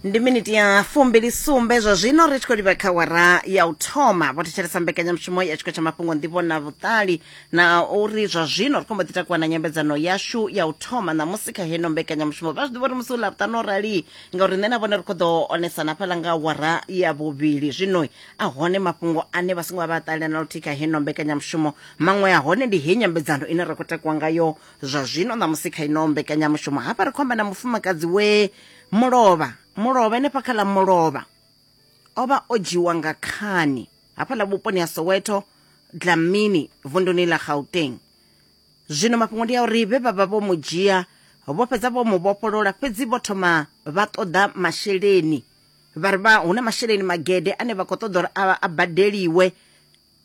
ndi miniti ya fumbili sumbe zwa zwino ri tshi khou livha kha wara ya u thoma vho thetshelesa mbekanyamushumo ya tshiko tsha mafhungo ndivho na vhuṱali na uri zwa zwino ri khombo ḓi takuwa na nyambedzano yashu ya u thoma ṋamusi kha heno mbekanyamushumo vha zwi ḓivha uri musi u ḽavhuṱanu o rali ngauri nṋe na vhone ri khou ḓo onesana fhaḽa nga wara ya vhuvhili zwino a hone mafhungo ane vha songo vha vha ṱalela na luthihi kha heno mbekanyamushumo maṅwe a hone ndi heyi nyambedzano ine ra khou takuwa ngayo zwa zwino ṋamusi kha ino mbekanyamushumo hafha ri khomba na mufumakadzi we mulovha mulovha enefha kha ḽa mulovha o vha o dzhiwa nga khani hafhaḽa vhuponi ha soweto dlamini vunduni ḽa gauteng zwino mafhungo ndi a uri vhe vha vha vho mu dzhia vho fhedza vho mu vhofholola fhedzi vho thoma vha ṱoḓa masheleni vha ri vha hu na masheleni magede ane vha khou ṱoḓa uri a badeliwe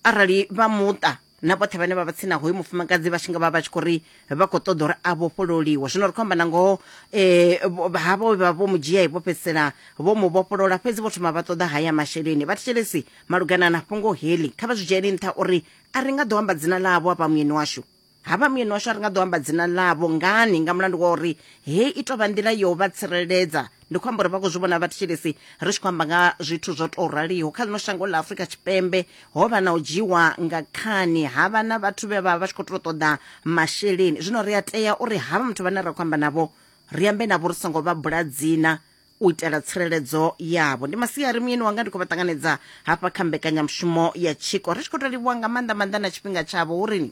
arali vha muṱa na vhoṱhe vhane vha vha tsina hoyu mufumakadzi vha tshi nga vha vha tshi khou ri vha khou ṱoḓa uri a vhofhololiwe zwino ri khou amba na ngoho um havho vha vho mu dzhia vho fhedzisela vho mu vhofholola fhedzi vho thoma vha ṱoḓa haya masheleni vha thetshelesi malugana na fhungo heḽi kha vha zwi dzhieli nṱha uri a ri nga ḓo amba dzina ḽavho a vha muyeni washu Havha muyeni washu a ri nga ḓo amba dzina ḽavho ngani nga mulandu wa uri he i tovha nḓila yo vha tsireledza ndi khou amba uri vha khou zwi vhona vhathetshelesi ri tshi khou amba nga zwithu zwo tou raliho kha ḽino shango ḽa Afrika Tshipembe ho vha na u dzhiwa nga khani ha vha na vhathu vhe vha vha tshi khou tou ṱoḓa masheleni zwino ri a tea uri havha muthu vhane ra khou amba navho ri ambe navho ri songo vha bula dzina u itela tsireledzo yavho ndi masiari muyeni wanga ndi khou vha ṱanganedza hafha kha mbekanyamushumo ya tshiko ri tshi khou tou livhuwa nga maanḓa maanḓa na tshifhinga tshavho hu rini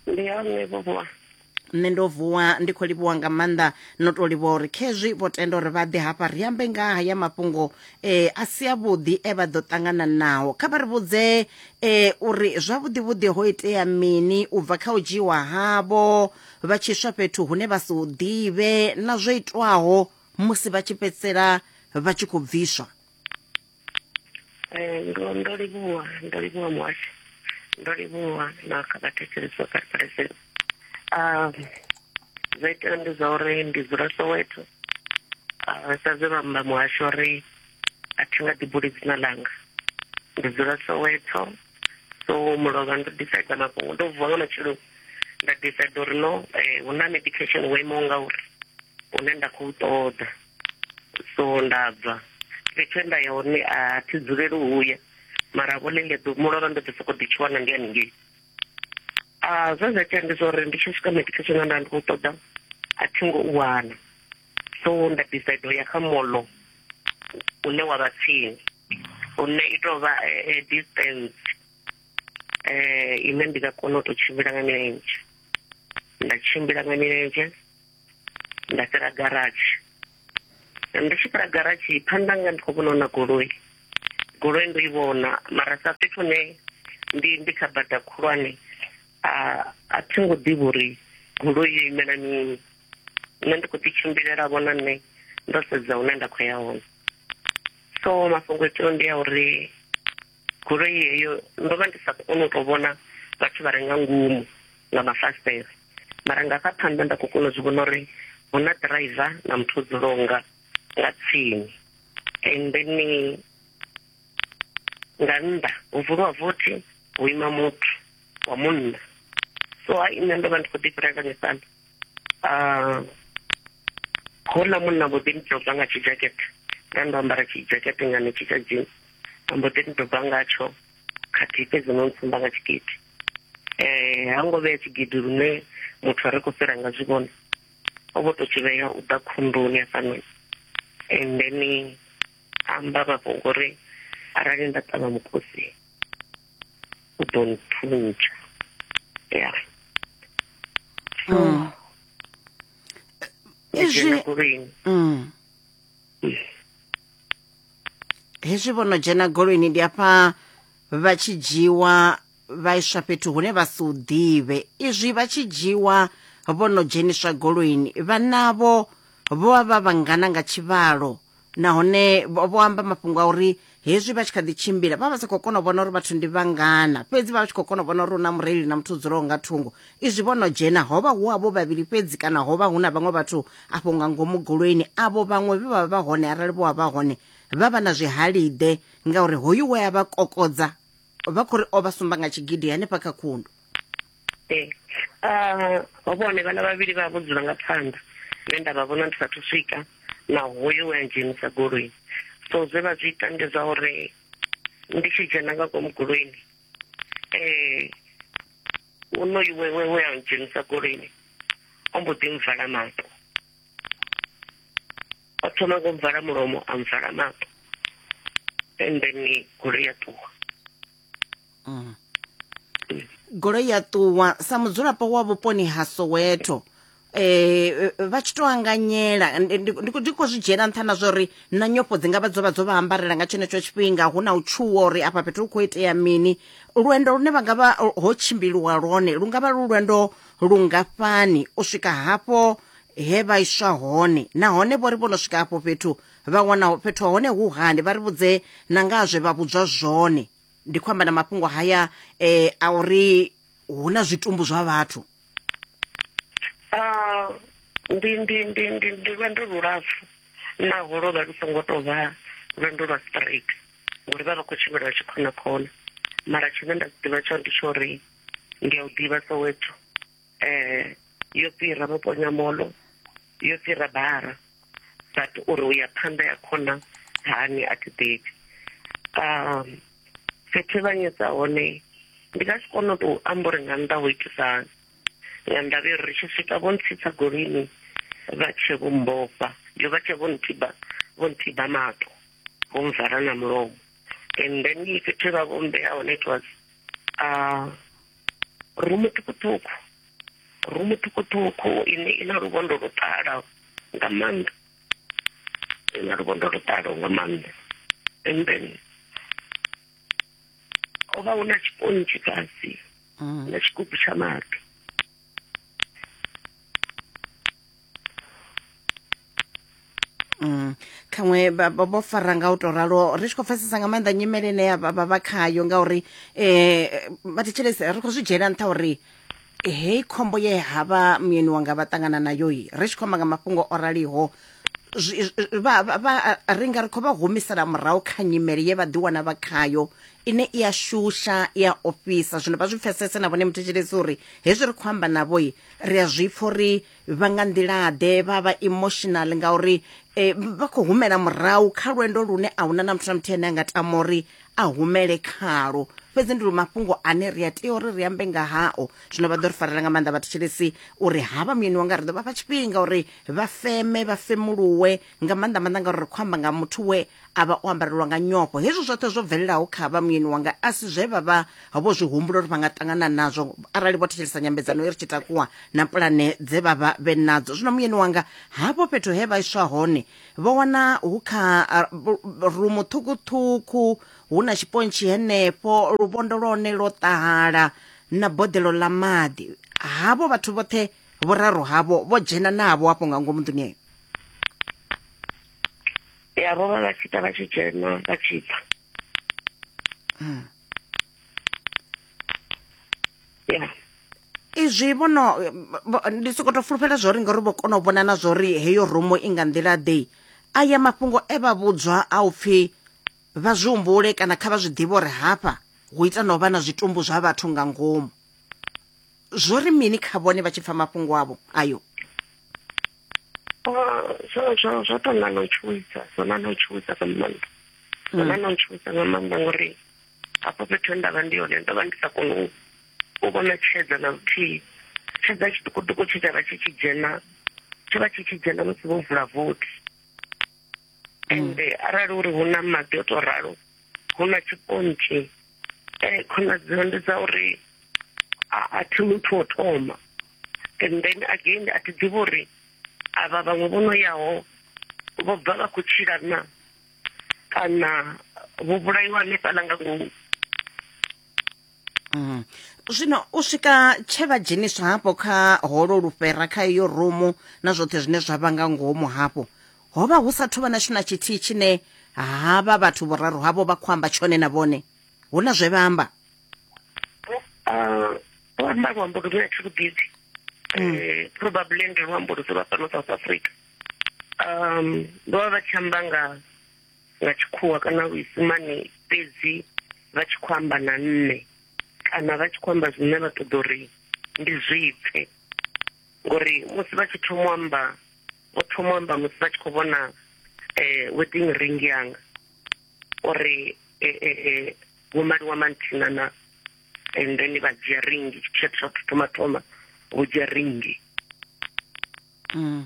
ndi ya nṋe vhovuwa nṋe ndo vuwa ndi khou livhuwa nga maanḓa no tou livhuwa uri khezwi vho tenda uri vha ḓe hafha ri ambe nga ha ya mafhungo um a si avhuḓi e vha ḓo ṱangana naho kha vha ri vhudze um uri zwavhuḓivhuḓi ho itea mini u bva kha u dzhiiwa havho vha tshi swa fhethu hune vha si hu ḓivhe na zwo itwaho musi vha tshi fhedzisela vha tshi khou bviswa eh, ndo ndo livhuwa ndo livhuwa muhasho ndo livhuwa na kha vhathetshelesi vha karipareseni um zwa itela ndi zwa uri ndi dzula soweto ah, sa zwe vhamba muhasho uri a thi nga ḓibuli dzina langa ndi dzula soweto so mulovha ndo decide mafhungo ndo vuwa nga matshelo nda decide uri no eh, hu na medication wo imaho ngauri une nda khou ṱoḓa so nda bva fhethu e nda ya hone a thi dzuleli uya mara vho ḽeḽe ḓo mulovha ndo ḓi sokou ḓi tshiwana ndi haningei a zwe zwa tea ndi zwa uri ndi tshi swika medication a nda ndi khou ṱoḓa a thi ngo u wana so nda decide u ya kha molo une wa vha tsini Hune i tou vha distance ine ndi nga kona u tou tshimbila nga milenzhe. Nda tshimbila nga milenzhe, nda fhira garatshi. Ndi tshi fhira garatshi, phanḓa hanga ndi khou vhona huna goloi. Goloi ndo i vhona, mara sa fhethu hune ndi ndi kha bada khulwane, a a thi ngo ḓivha uri goloi yo imela mini. Nṋe ndi khou ḓi tshimbilela vho na nṋe ndo sedza hune nda khou ya hone. so mafhungo itiwa ndi ya uri goloi heyo ndo vha ndi sa koni u tou vhona vhathu vha re nga ngomu nga mafasitere mara nga sa phanḓa nda khou kona u zwi vhona uri hu na driver na muthu o dzulaho nga nga tsini and then nga nnḓa ho vuliwa vothi ho ima muthu wa munna so ha nṋe ndo vha ndi khou ḓi fhirela misana ah, ho na munna mbo ḓi ndoba nga tshijakete nda ndo ambara tshijakete nga netshi tsha dzini mbo ḓi ndoba ngatsho khathihi fhedzi no ntsumba nga tshigidi um ha ngo vhea tshigidi lune muthu a ri khou fhira nga zwi vhona o vho to tshi vhea u ḓa khunduni hafhanoni and then amba mafhungo uri arali nda ṱavha mukosi u ḓo nthuntsha ya so mm. izwi mm. hezwi vho no dzhena goloini ndi afha vha tshi dzhiwa vha iswa fhethu hune vha si u ḓivhe izwi vha tshi dzhiwa vho no dzheniswa goloini vhanavho vho vha vha vhangana nga tshivhalo nahone vho vho amba mafhungo a uri hezwi vha tshi kha ḓi tshimbila vha vha sa khou kona u vhona uri vhathu ndi vhangana fhedzi vha vha tshi khou kona u vhona uri hu na mureili na muthu dzulaho nga thungo izwi vho no dzhena ho vha hu avho vhavhili fhedzi kana ho vha hu na vhaṅwe vhathu afho nga ngomu goloini avho vhaṅwe vhe vha vha vha hone arali vho vha vha hone vha vha na zwihaliḓe ngauri hoyu we a vha kokodza vha khou ri o vha sumba nga tshigidi hanefha kha khundu ee ah, ho vha hone vhana vhavhili vha vho dzula nga phanḓa nṋe nda vha vhona ndi sathu swika na hoyo we a dzhenisa goloi so zwe vha zwi ita ndi zwa uri ndi tshi dzhena nga ngomu goloini um onoyu wewe we a dzhenisa goloini o mbo ḓi mvala maṱo o thoma ngo mvala mulomo a mvala maṱo and then goloi ya ṱuwa mm. goloi ya ṱuwa sa mudzulapo wa vhuponi ha soweto eh vha tshi to anganyela ndi kho zwi dzhena nṱha na zwa uri na nyofho dzi ngavha dzo vha dzo vha ambarela nga tshenetsho tshifhinga hu na u tshuwa uri afha fhethu hu khou itea mini lwendo lune vha ngavha ho tshimbiliwa lwone lu ngavha lu lwendo lungafhani u swika hafho he vha iswa hone nahone vho ri vho no swika hafho fhethu vha wana fhethu hone hu hani vha ri vhudze na nga zwe vha vhudzwa zwone ndi khou amba na mafhungo haya eh, a uri hu na zwitumbu zwa vhathu Ah, ndi ndi ndi ndi ndi lwendo lulapfu naho lwo vha lu songo tou vha lwendo lwa straight ngori vha vha khou tshimbila vha tshi khona khona mara tshine nda si ḓivha tsho ndi tsho uri ndi a u ḓivha soweto eh yo fhira muponya molo yo fhira bara but uri u ya phanḓa ya khona hani a thi ḓivhi um fhethu vha nyedza hone ndi nga si kone u tou amba uri nga nnḓa ho itisa nga ndavha uri ri tshi swika vho ntsitsa golini vha tshe vho mbofa yo vha tshe vho nthiba vho nthiba mato vho mvala na mulomo and then fhethu vha vho mbeya hone it was uh, rumu ṱhukhuṱhukhu rumu ṱhukhuṱhukhu ine i na luvhondo lu ṱalaho nga maanḓa i na luvhondo lu ṱalaho nga maanḓa and then ho vha hu na tshipontshi fhasi mm. na tshigubu tsha maḓi Mm. khaṅwe vho fara nga u to ralo ri tshi khou pfesesa nga maanḓa nyimele ine vha vha khayo ngauri um vha thetshelese ri khou zwi dzhiela nṱha uri hei khombo ye ha vha muyeni wanga vha ṱangana nayo i ri tshi khou amba nga mafhungo o raliho ri nga ri khou vha humisela murahu kha nyimele ye vha ḓiwana vha khayo ine i a shusha i a ofhisa zwino vha zwi pfesese na vhone muthetshelesi uri hezwi ri khou amba navho ri a zwi pfha uri vha nga nḓilaḓe vha vha emotional ngauri eh, vha khou humela murahu kha lwendo lune a huna na muthu na muthihi ane a nga tama uri a humele khalo fhedzi ndi lu mafhungo ane ri a tea uri ri ambe nga hao zwino vha ḓo ri farela nga maanḓa vhathetshelesi uri havha muyeni wanga ri ḓo vha fha tshifhinga uri vha feme vha femuluwe nga maanḓa maanḓa ngauri ri khou amba nga muthu we a vha o ambarelwa nga nyofho hezwo zwoṱhe zwo bvelelaho kha vha muyeni wanga a si zwe vha vha vho zwi humbula uri vha nga ṱangana nazwo arali vho thetshelesa nyambedzano i ri tshi takuwa na pulane dze vha vha vhe nadzo zwino muyeni wanga hafho fhethu he vha iswa hone vho wana hu kha rumu ṱhukhuṱhukhu hu na tshipontshi henefho luvhondo lwa hone lwo ṱahala na boḓelo ḽa maḓi havho vhathu vhoṱhe vhoraru havho vho dzhena navho hafho nga ngomu nḓuni eyo ya vho vha vha tshi ita vha tshi dzhena vha tshi bva hmm. ya izwi vhono ndi soko to fulufhela zwo ri ngori vho kona u vhona na zwo ri heyo rumo i nga nḓila ḓe aya mafhungo e vha vhudzwa a u pfi vha zwi humbule kana kha vha zwi ḓivhe uri hafha hu ita no vha na zwitumbu zwa vhathu nga ngomu zwo ri mini kha vhone vha tshi pfa mafhungo avho ayo zwo to na no tshuwisa zwo na no tshuwisa nga maanḓa zwo na no tshuwisa nga maanḓa ngori hafho fhethu he ndavha ndi yone ndo vha ndi sa koni u vhona tshedza na luthihi tshedza tshiṱukuṱuku tshe tsha vha tshi tshi dzhena tsho vha tshi tshi dzhena musi vho vula vothi ende arali uri hu na maḓi o to ralo hu na tshipontshi um khonadzeo ndi dza uri a thi muthu wo thoma and then again a thi ḓivhi uri avha vhaṅwe vho no yaho vho bva vha khou tshila na kana vho vhulaiwa hanefhaḽa nga ngomu mm. zwino u swika tshe vha dzheniswa hafho kha holo lufhera kha iyo rumu na zwoṱhe zwine zwa vha nga ngomu hafho Ho vha hu sa thu vha na tshithu na tshithihi tshine havha vhathu vhuraru havho vha khou amba tshone na vhone. Hu na zwe vha amba. Vho amba luambo lu ne a thi lu ḓivhi, mm. eh, probably ndi luambo lu dzula fhano South Africa. Um, vho vha vha tshi amba nga nga tshikhuwa kana luisimane fhedzi vha tshi khou amba na nṋe kana vha tshi khou amba zwine vha ṱoḓa uri ndi zwipfe ngori musi vha tshi thoma u amba vho thoma amba musi vha tshi khou vhona um wedding ring yanga uri eh, eh, eh, vho maliwa manthina na and then vha dzhia ringi tshithu tsha thu thoma thoma vho dzhia ringi mm.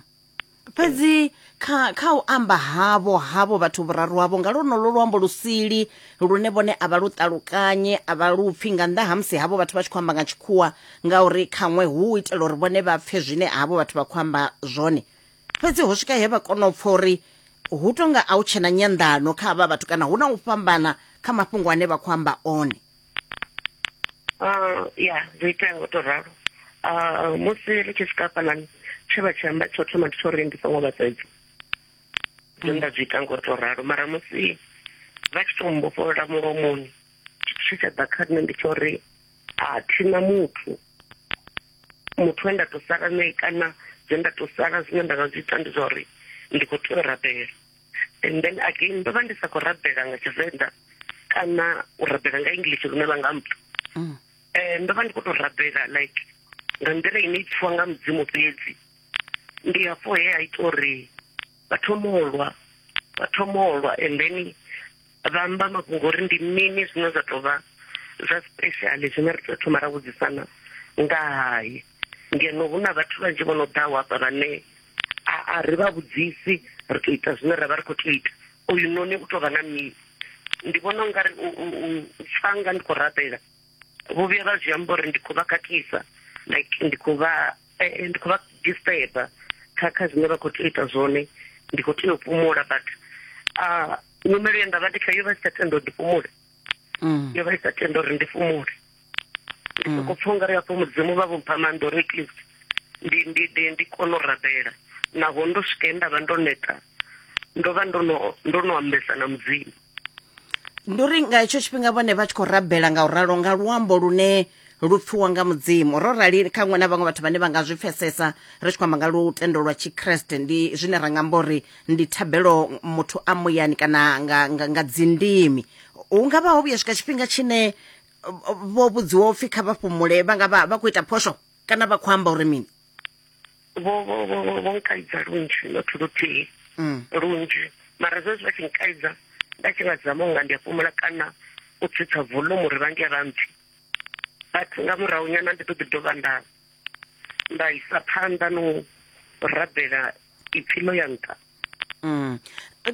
fhedzi kha kha u amba havho havho vhathu vhuraru havho nga lonolo luambo lusili lune vhone a vha lu ṱalukanye a vha lupfhi nga nnḓa ha musi havho vhathu vha tshi khou amba nga tshikhuwa ngauri khaṅwe hu u itela uri vhone vha pfe zwine havho vhathu vha khou amba zwone fhedzi ho swika he vha kona u pfa uri hu tonga a u tshena nyanḓano kha havha vhathu kana hu na u fhambana kha mafhungo ane vha khou amba one uh, ya zwo itea ngo to ralo uh, musi ri tshi swika fhanani tshe vha tshi amba tsho thoma ndi tsho uri ndi songo vhasedza zwe nda zwi ita ngo to ralo mara musi vha tshi to mbofholola mulomoni tshi tsha ḓa kha nṋe ndi tsho uri a thina muthu muthu we nda to sala nae kana zwe nda to sala zwine nda nga zwi ita ndi zwa uri ndi khou tea u rabela and then again ndo vha ndi sa khou rabela nga tshivenḓa kana u rabela nga english lune vha nga mpfa um ndo vha ndi khou to rabela like nga nḓila ine i pfiwa nga mudzimu fhedzi ndi hafho he a ita uri vha thoma u lwa vha thoma u lwa and then vha amba mafhungo uri ndi mini zwine zwa tou vha zwa special zwine ri tea thoma ra vhudzisana nga haye ngeno hu na vhathu vhanzhi vho no ḓaho hafha vhane a ri vha vhudzisi ri tou ita zwine ra vha ri khou tou ita uyu noni u tou vha na mini ndi vhona u nga ri u pfa nga ndi khou rabela vho vhuya vha zwi amba uri ndi khou vha khakhisa like ndi khou vha eh, eh, ndi khou vha disturba kha kha zwine vha khou tou ita zwone ndi khou tea u fhumula but ah, nyimelo ye nda vha ndi kha yo vha i sa tenda uri ndi fhumule mm. yo vha i sa tenda uri ndi fhumule ndi mm. soko pfa u nga ri hafho mudzimu vha vhompha maanḓa uri at least ndi ndi ndi ndi kone u rabela naho ndo swike nda vha ndo neta ndo vha ndo no ndo no ambesa na mudzimu ndi uri nga hetsho tshifhinga vhone vha tshi khou rabela nga u ralo nga luambo lune lu pfiwa nga mudzimu ro rali kha ṅwe na vhaṅwe vhathu vhane vha nga zwi pfesesa ri tshi khou amba nga lutendo lwa tshikreste ndi zwine ra nga amba uri ndi thabelo muthu a muyani kana nga, nga, nga dzindimi hu nga vha ho vhuya swika tshifhinga tshine uh, vho vhudziwa upfhi kha vha fhumule vha nga vha vha khou ita phosho kana vha khou amba uri mini vho vho vho vho- vho nkaidza lunzhi not luthihi Mm. lunzhi mara zwezwi vha tshi nkaidza nda tshi nga zama unga ndi a fhumula kana u tsitsa volume uri vha nge vha mpfi but nga murahu nyana ndi ḓo ḓi dovha nda nda isa phanḓa no rabela ipfi ḽo ya nṱha mm.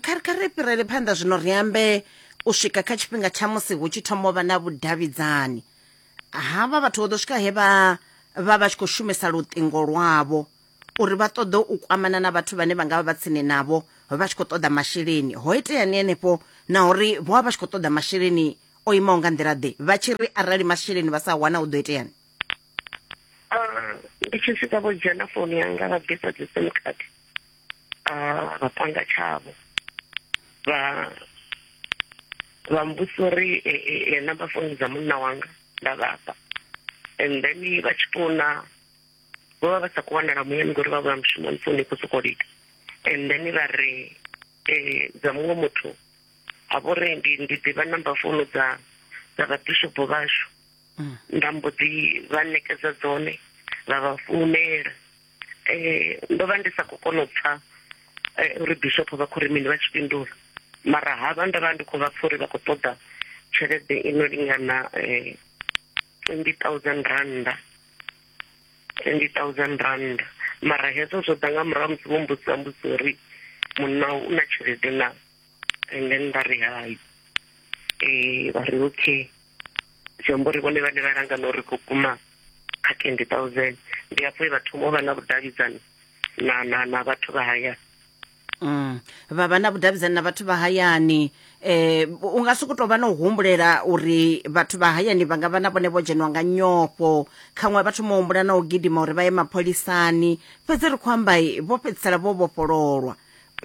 kha ri kha ri fhirele phanḓa zwino ri ambe u swika kha tshifhinga tsha musi hu tshi thoma u vha na vhudavhidzani havha vhathu vho ḓo swika he vha vha vha tshi khou shumisa luṱingo lwavho uri vha ṱoḓe u kwamana na vhathu vhane vha nga vha vha tsini navho vha tshi khou ṱoḓa masheleni ho itea ni henefho na uri vho vha vha tshi khou ṱoḓa masheleni o imaho nga nḓila ḓe vha tshi ri arali masheleni vha sa wana hu ḓo iteani ah, ndi tshi swika vho dzhena founu yanga vha bvisa dzi sim card ah, vha panga tshavho vha vha mbusa uri e, e, e, namba founu dza munna wanga nda vhafha and then vha tshi founa vho vha vha sa khou wanala muyani ngori vha vha mushumoni founu i khou sokou lika and then vha ri dza muṅwe muthu a vho ri ndi ndi ḓivha namba founu dza dza vhabishopo vhashu mm. nda mbo ḓi vha ṋekedza dzone vha vha founela um ndo vha ndi sa khou kona u pfa eh, uri bishopo vha khou ri mini vha tshi fhindula mara havha nda vha ndi khou vha pfa uri vha khou ṱoḓa tshelede ino lingana um twenty thousand randa twenty thousand rand mara hezwo zwo ḓa nga murahu musi vho mbudzisa mbudziso uri munna u na tshelede na and then vha ri hai eh vha ri okay zwi amba uri vhone vhane vha langa na uri khou kuma kha twenty thousand ndi hafho e vha thoma u vha na vhudavhidzani na na na vhathu vha haya Mm. vha vha na vhudavhidzani na vhathu vha hayani eh u nga si ku tou vha na u humbulela uri vhathu vha hayani vha nga vha na vhone vho dzhenwa nga nyofho khaṅwe vhathu mo humbula na u gidima uri vha ye mapholisani fhedzi ri khou amba vho fhedzisela vho vhofhololwa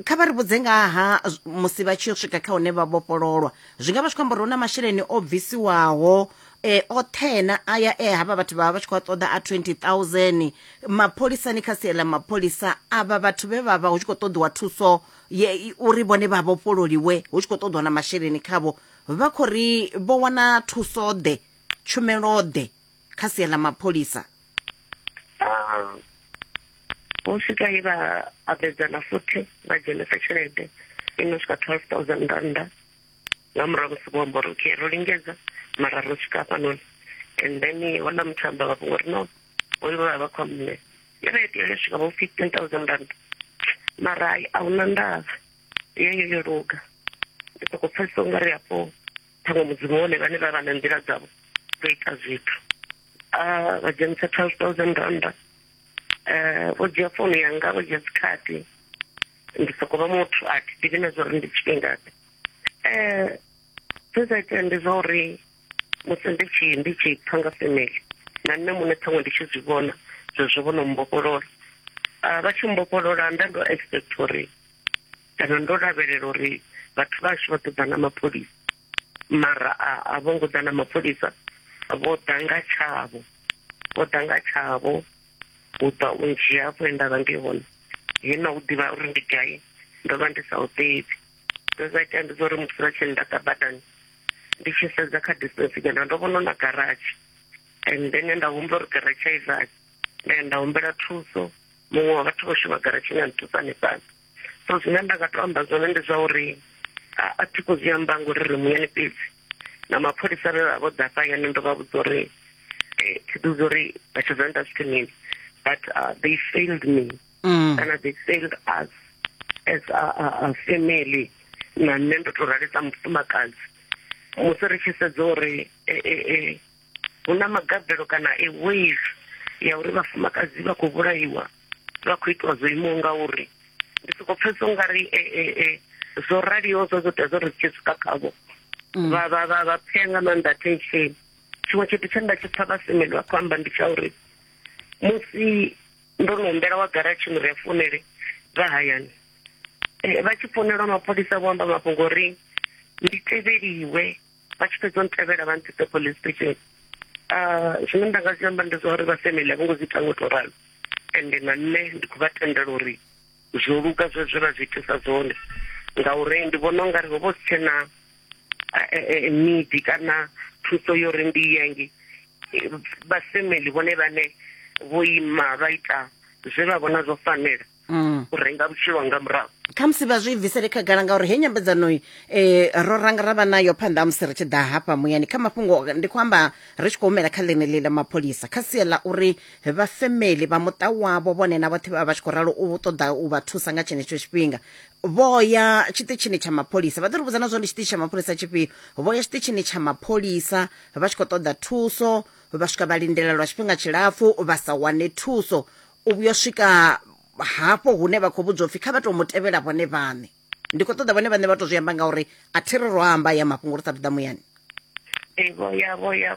kha vha ri vhudze nga ha musi vha tshi yo swika kha hune vha vhofhololwa zwi nga vha zwi khou amba uri hu na masheleni o bvisiwaho e othena aya e havha vhathu vha vha tshi khou a ṱoḓa a 20000 mapholisani kha sia ḽa mapholisa avha vhathu vhe vha vha hu tshi khou ṱoḓiwa thuso ye uri vhone vha vhofhololiwe hu tshi khou ṱoḓiwa na masheleni khavho vha khou ri vho wana thuso ḓe tshumelo ḓe kha sia ḽa mapholisa ah, vho swika he vha abedzana futhi vha dzhenisa tshelede i no swika twelve thousand rannda nga murahu musi vho amba uri okay ro lingedza mara ro swika hafhanoni and then hona muthu amba vha vhungo uri no hoyu vha vha vha khou mme yo vha itea yo swika vho fifteen thousand rand mara a hu na ndavha yeyo yo luga ndi sokou pfesesa u nga ri hafho ṱhaṅwe mudzimu hone vhane vha vha na nḓila dzavho dzo ita zwithu vha dzhenisa twelve thousand randa um vho dzhia founu yanga vho dzhia dzikhadi ndi soko vha muthu a thi ḓivhi na zwa uri ndi tshifhingaḓe um zwe zwa itea ndi zwa uri musi ndi tshi ndi tshi pfa nga family na nṋe muṋe ṱhaṅwe ndi tshi zwi vhona zwezwo vho no mbofholola vha tshi mbofholola nda ndo expect uri kana ndo lavhelela uri vhathu vhashu vha ḓo ḓa na mapholisa mara a vho ngo ḓa na mapholisa vho ḓa nga tshavho vho ḓa nga tshavho u ḓa u ndzhia afho e nda vha ndi hone he na u ḓivha uri ndi gai ndo vha ndi sa u ḓivhi zwe zwa itea ndi zwa uri musi vha tshi ndaḓa badani ndi tshi sedza kha distance kana ndo vhona na garatshi and then nda humbula uri garatshi a i vali nda ya nda humbela thuso muṅwe wa vhathu vho shuma garatshini a nthusa hanefhaḽa so zwine nda nga to amba zwone ndi zwa uri a thi khou zwi amba ngori ri muyani fhedzi na mapholisa vhe vha vho ḓa fhayani ndo vha vhudza uri eh, thi ḓi uri vha tshi zwa nda zwithu mini but uh, they failed me mm. kana they failed us as a, a, a family na nṋe ndo to ralisa mufumakadzi musi ri tshi sedza uri eh, eh, eh, Hu na magabelo kana a wave ya uri vhafumakadzi vha khou vhulaiwa vha khou itiwa zwo imaho nga uri ndi soko pfhesesa ungari e, e, e, zwo raliho zwo zwo tea zwo ri tshi swika khavho mm. vha vha vha vha pfea nga maanḓa attention tshiṅwe tshithu tshe nda tshi pfha vhasemeli vha khou amba ndi tsha uri musi ndo no humbela wa garatshi uri a founele vha hayani e, vha tshi founelwa mapholisa vho amba mafhungo uri ndi tevheliwe vha tshi fhedza ntevhela vha ntsitse police station ah, zwine nda nga zwi amba ndi zwa uri vha family a vho ngo zwi ita ngo to ralo ende na nṋe ndi khou vha tendela uri zwo luga zwe zwe vha zwi itisa zwone ngauri ndi vhona ungari ho vho si tshena ah, eh, eh, need kana thuso yo ri ndi yenge vha family vhone vhane vho ima vha ita zwe vha vhona zwo fanela mm. u renga vhutshilo nga murahu khamusi vha zwi bvisele khagala ngauri he nyambedzano um eh, ro ranga ra vha nayo phanḓa ha musi ri tshi ḓa hafha muyani kha mafhungo ndi khou amba ri tshi khou humela kha ḽeneḽi ḽa mapholisa kha sia ḽa uri vha femeli vha muṱa wavho vhone na vhoṱhe vha vha tshi khou ralo u ṱoḓa u vha thusa nga tshenetsho tshifhinga vho ya tshiṱitshini tsha mapholisa vha ḓo ri vhudza na zwo ndi tshiṱitshi tsha mapholisa tshifhio vho ya tshiṱitshini tsha mapholisa vha tshi khou ṱoḓa thuso vha swika vha lindela lwa tshifhinga tshilapfu vha sa wane thuso u vhuya swika hafho hune vha khou vhudzwa upfhi kha vha tou mu tevhela vhone vhaṋe ndi khou ṱoḓa vhone vhaṋe vha tou zwi amba ngauri a thi ri ro amba ya mafhungo ri sa athu ḓa muyani vho ya vho ya